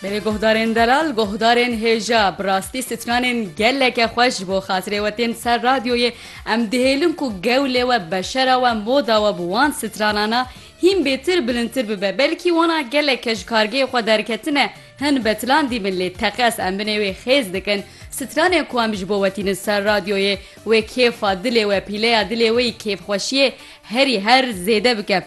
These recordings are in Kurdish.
Berê guhdarên delal, guhdarên hêja, bi rastî stranên geleke xweş ji bo xatirê we tên ser radyoyê, em dihêlin ku gewlê we, beşera we, moda we bi wan stranana hîn bêtir bilindtir bibe, belkî wana geleke ji kargeyê xwe derketine, hin betilan dîbin lê teqez em binê wê xêz dikin, stranên ku em ji bo we tînin ser radyoyê wê kêfa dilê we, pîleya dilê wê yî kêfxweşiyê herî her zêde bike.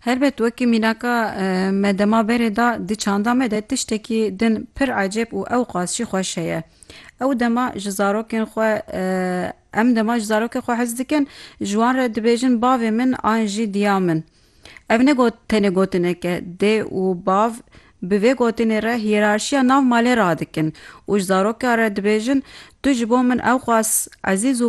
Helbet wekî mînaka me dema berê da di çanda me de tiştekî din pir ecêb û ewqas jî xweş heye. Ew dema ji zarokên xwe em dema ji zarokên xwe hez dikin ji wan re dibêjin bavê min an jî diya min. Ev ne got tenê gotinek e, dê û bav bi vê gotinê re hîyerarşiya nav malê radikin û ji zaroka re dibêjin tu ji bo min ewqas ezîz û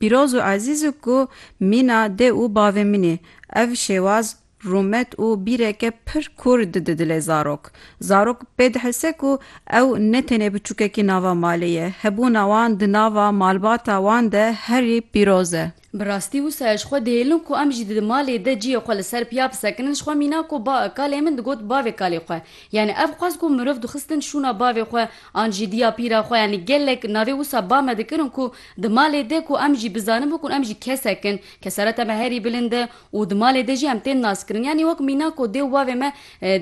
Pîroz û ezîz û ku mîna dê û bavê min ê. Ev şêwaz rûmet û bîreke pir kûr di di dilê zarok. Zarok pê dihese ku ew ne tenê biçûkekî nava malê ye, hebûna wan di nava malbata wan de herî pîroz e. Bi rastî wisa ye ji xwe dihêlin ku em jî di di malê de cihê xwe li ser piya bisekinin, ji xwe mîna ku ba kalê min digot bavê kalê xwe. Yanî ev xwest ku mirov dixistin şûna bavê xwe an jî diya pîra xwe yanî gelek navê wisa ba me dikirin ku Di malê de ku em jî bizanin bû ku em jî kesek in, kesereta me herî bilind e û di malê de jî em tên naskirin. Yanî wek mîna ku dê û bavê me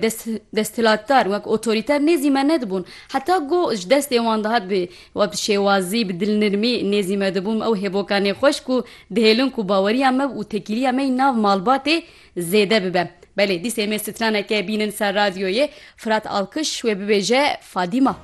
dest desthilatdar, wek otorîter nêzî me nedibûn. Heta ku ji destê wan dihat bi wek bi şêwazî, bi dilnirmî nêzî me dibûn, ew hêboka nêxweş ku dihêlin ku baweriya me û tekîliya me yî nav malbatê zêde bibe. Belê, dîsê me straneke bînin ser radyoyê, Firat Alkiş wê bibêje Fadîma.